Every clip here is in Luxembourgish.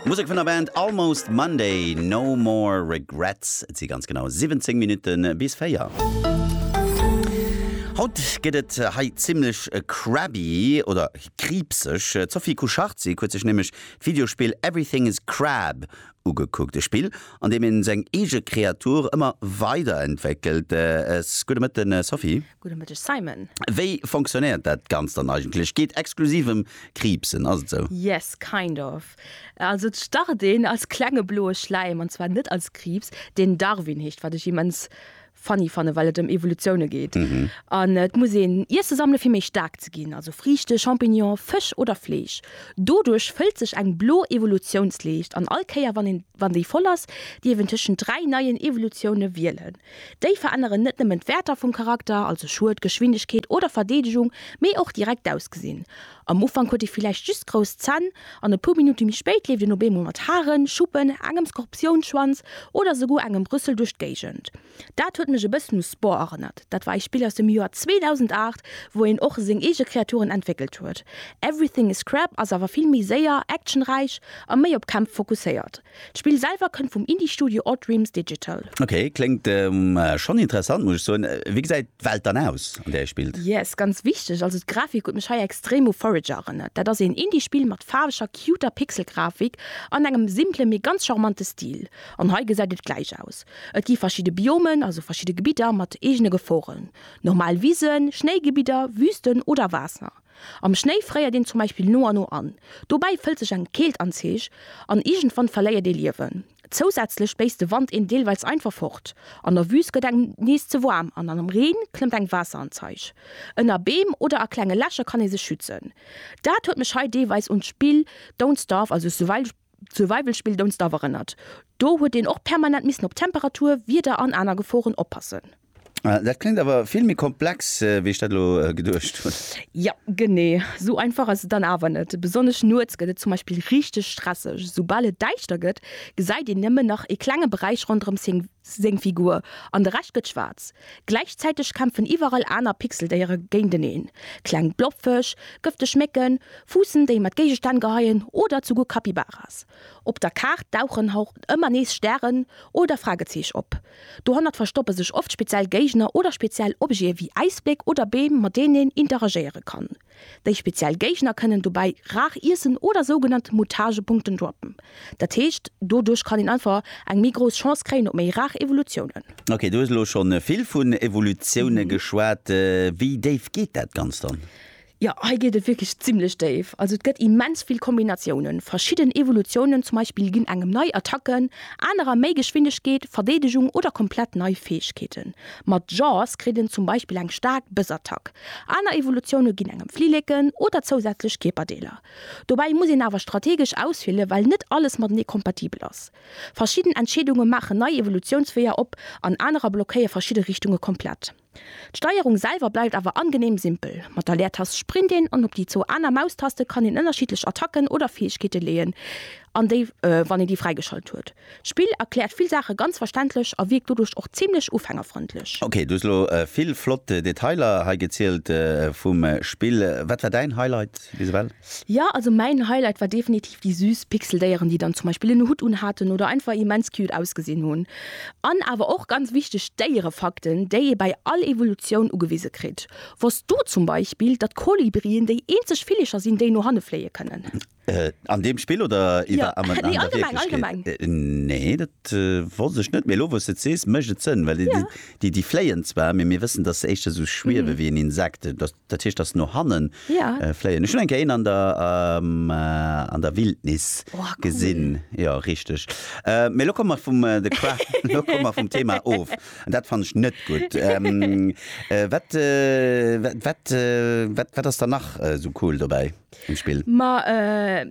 Musek vun der Band Almost Monday, No More Regrets. Et si ganz genau 17 Minutte bis 4. Haut gëtt et hei zimmlech crabby oder kriibseg. D'Sophie Kucharczyk huet sech nämlech d'Videospill Everything Is Crab ugekuckt. E Spill, an deem ee seng eege Kreatur ëmmer weiderentwéckelt. S, Gudde Mëtten, Sophie. Gudde Mëtteg Simon. Wéi fonctionnéiert dat Ganzt dann eigentlech? Geet exklusiv em Kriibsen, ass et sou? Yes, kind of. Also et start een als klenge bloe Schläim, an zwar net als Kriibs, deen Darwin heescht, wat ech immens funny fanne well et em Evolutioune geet. An et muss een Iesse sammele fir méi staark ze ginn, also Friichte, Champignonen, Fësch oder Fleesch. Doduerch fëllt sech eng blo Evolutiounsleescht, an all Kéier wann een, wann déi voll ass, dierf een tëschent dräi neien Evolutioune wielen. Déi veränneren net nëmmen d'Wäerter vum Charakter, also Schued, Geschwindegkeet oder Verdeedegung, mee och direkt d'Ausgesinn. Am Ufank huet ee villäicht just grouss Zänn, an e puer Minutte méi spéit leeft een op eemol mat Haren, Schuppen, engem Skorpiounsschwanz oder souguer engem Rüssel duerch d'Géigend. Dat huet mech e bëssen u Spore erënnert. Dat war ee Spill aus dem Joer 2008, wou een och seng eege Kreaturen entwéckelt huet. Everything is Scrap ass awer vill méi séier, actionräich a méi op Kämpf fokusséiert. D'Spill selwer kënnt vum Indie-Studio Odd Dreams Digital. Ok, kléngt schonn interessant muss ech soen. Wéi gesäit d'Welt dann aus an där ee spillt? Yes, ganz wichteg, also d'Grafik huet mech hei extrem u Forager erënnert. Dat ass een Indie-Spill mat faarweger, cuter Pixel-Grafik an engem simplen, mee ganz charmante Stil. An hei gesäit et gläich aus. Et gi verschidde Biomen, also verschidde Gebidder mat eegene Geforen, normal Wisen, Schnéigebidder, Wüsten oder Waasser. Am Schnéi fréiert een zum Beispill no a no an. Dobäi fëllt sech eng Keelt an d'Zeech an iergendwann verléiert ee Liewen. Zousätzlech béisst de Wand een deelweils einfach fort. An der Wüüst gëtt engem nees ze waarm an am Reen klëmmt eng Waasser an d'Zeech. Ënner Beem oder a klenge Lächer kann ee sech schützen. Dat huet mech hei deelweis un d'Spill Don't Starve, also Survival, D'Survival Spill Don't Starve erënnert, do huet een och permanent missen op Temperatur, Wieder an aner Geforen oppassen. Dat kléngt awer vill méi komplex wéi ech dat elo geduecht hunn. Jo, genee sou einfach ass et dann awer net. Besonnesch nuets gëtt et zum Beispill richteg stresseg. Soubal et däischter gëtt, gesäit een nëmmen nach ee klenge Beräich ronderëm seng. seng Figur an de Rescht gëtt schwaarz. Gläichzäiteg kämpfen iwwerall aner Pixeldéiere géinteneen, kleng Blobfësch, gëfteg Mécken, Fuussen, déi mat Géigestänn geheien oder zuguer Capybaras. Op der Kaart dauchen och ëmmer nees Stären oder Fragezeech op. Dohannert verstoppe sech oft speziell Géigner oder speziell Objete wéi Äisbléck oder Beem, mat deenen een interagéiere kann. Déi speziell Géigner kënnen dobäi rar iessen oder sougenannt Mutagepunkten droppen. Dat heescht, doduerch kann een einfach eng méi grouss Chance kréien op méi rar Evolutiounen. Ok, du hues elo scho vill vun Evolutioune geschwat. Wéi déif geet dat Ganzt dann? Jo, hei geet et wierklech zimmlech déif. Also et gëtt immens vill Kombinatiounen. Verschidden Evolutiounen zum Beispill ginn engem nei Attacken, anerer méi Geschwindegkeet, Verdeedegung oder komplett nei Fäegkeeten. Mat Jaws kritt en zum Beispill eng staark Bëssattack. Aner Evolutioune ginn engem Flilleken oder zousätzlech Kierperdeeler. Dobäi muss een awer strategesch auswielen, well net alles matenee kompatibel ass. Verschidden Entscheedunge maachen nei Evolutiounsweeër op an anerer blockéie verschidde Richtunge komplett. D'Steierung selwer bleift awer angeneem simpel, Mat der Leertast sprint een an op déi zwou aner Maustaste kann een ënnerschiddlech Attacken oder Fäegkeete leeën an déi, wann een déi fräigeschalt huet, D'Spill erkläert vill Saache ganz verständlech a wierkt doduerch och zimmlech ufängerfrëndlech. Ok, du hues elo vill flott Detailer hei gezielt vum Spill. Wat war däin Highlight bis ewell? Jo, also mäin Highlight war definitiv déi süß Pixeldéieren, déi dann zum Beispill en Hutt unhaten oder einfach immens cute ausgesinn hunn. An awer och, ganz wichteg, d'Déierefakten, déi ee bei all Evolutioun ugewise kritt. Wosst du zum Beispill, datt Kolibrien déi eenzeg Villecher sinn, déi no hanne fléie kënnen? Äh, an deem Spill oder iwwer ja. nee, an allgemeng, allgemeng. Äh, nee, dat äh, wo sech net méi lo wos et sees mécht et sënn, well ja. déi déi fléien zwar, mir mir wëssen, dat se éischter so schwiewe mhm. wéi en Insekt, dat, dat heescht ass no hannen ja. äh, fléien. Ech hun eng Kéin an der ähm, äh, an der Wildnis oh, cool. gesinn ja richteg. Äh, mé lo kom mat vum äh, de Qua lo kom mat vum Thema of. An dat fannech net gut. Ähm, äh, wat, äh, wat, wat, äh, wat, wat ass da nach äh, so cool dobäi? um Spill. Ma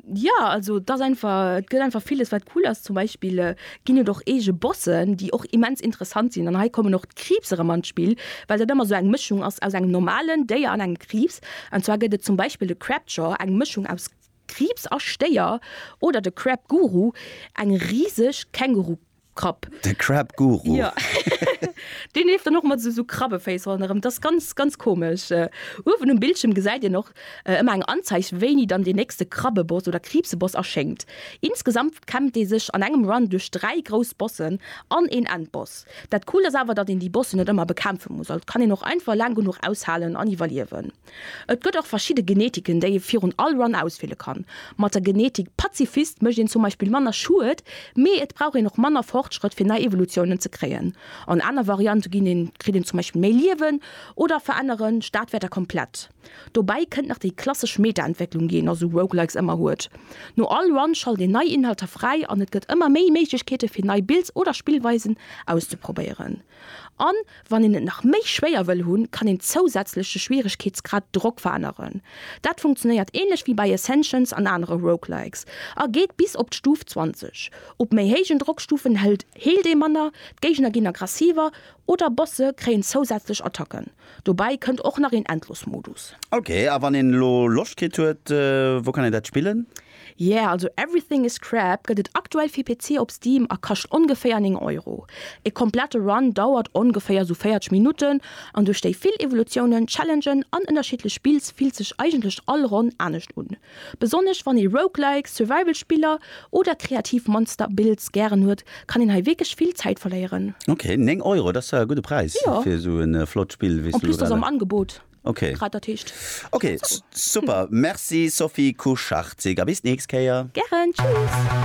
jo, also et ass einfach, et gëtt einfach villes wat cool ass. Zum Beispill ginn et och eege Bossen, déi och immens interessant sinn. An hei kommen och d'Kriibs erëm an d'Spill, well dat ëmmer esou eng Mëschung ass aus engem normalen Déier an engem Kriibs. An zwar gëtt et zum Beispill de Crabjaw, eng Mëschung aus Kriibs a Stéier, oder de Crabguru, eng riseg Känguru-Krabbe. Krapp. De Crab Guru. Jo. Deen leeft dann och mat esou Krabbeféiss ronderëm. Dat ass ganz, ganz komesch. Uewen um Bildschierm gesäit een och ëmmer eng Anzeig, wéini dann deen nächste Krabbeboss oder Kriibseboss erschéngt. Insgesamt kämmt ee sech an engem Run duerch dräi grouss Bossen an een Endboss. Dat Coolt ass awer, datt een déi Bossen net ëmmer bekämpfe muss. Also kann een och einfach laang genuch aushalen an iwwerliewen. Et gëtt och verschidde Genetiken, déi ee virun all Run auswiele kann. Mat der Genetik Pazifist mécht een zum Beispill manner Schued, mee et brauch een och manner Fortschrëtt fir nei Evolutiounen ze kréien. An aner Variante ginn een, kritt een zum Beispill méi Liewen oder verännere Stadwäerter komplett. Dobäi kënnt nach déi klassesch Meta-Entwécklung, déi een a sou Roguelikes ëmmer huet. No all Run schalt een nei Inhalter fräi an et gëtt ëmmer méi Méiglechkeete fir nei Builds oder Spillweisen auszeprobéieren. An wann een et nach méi schwéier wëll hunn, kann een zousätzlech de Schwieregkeetsgrad Drock veränneren. Dat funktionéiert ähnlech wéi bei Ascensions an anere Roguelikes a geet bis op d'Stuf 20. Op méi héijen Drockstufen hëlt heelt ee manner, d'Géigner ginn aggressiver oder Bosse kréien zousätzlech Attacken. Dobäi kënnt och nach een Endlosmodus. Ok, a wann een elo Loscht kritt huet, wou kann een dat spillen? Yeah, also Everything is Crap gëtt et aktuell fir PC op Steam a kascht ongeféier 9 Euro. E komplette Run dauert ongeféier sou 40 Minutten an duerch déi vill Evolutiounen, Challengen an ënnerschiddlech Spills fillt sech eigentlech all Ronn anescht un. Besonnesch wann ee Roguelikes, Survival Spiller oder kreativ Monster Builds gären huet, kann een hei wierklech vill Zäit verléieren. Ok, 9 Euro, dat ass jo e gudde Präis fir sou e flott Spill wéi s du lo grad. En plus, dat ass am Angebot. Okay. Grad dat heescht. Okay, super. Merci Sophie Kucharczyk a bis d'nächst Kéier. Gären, tschüss.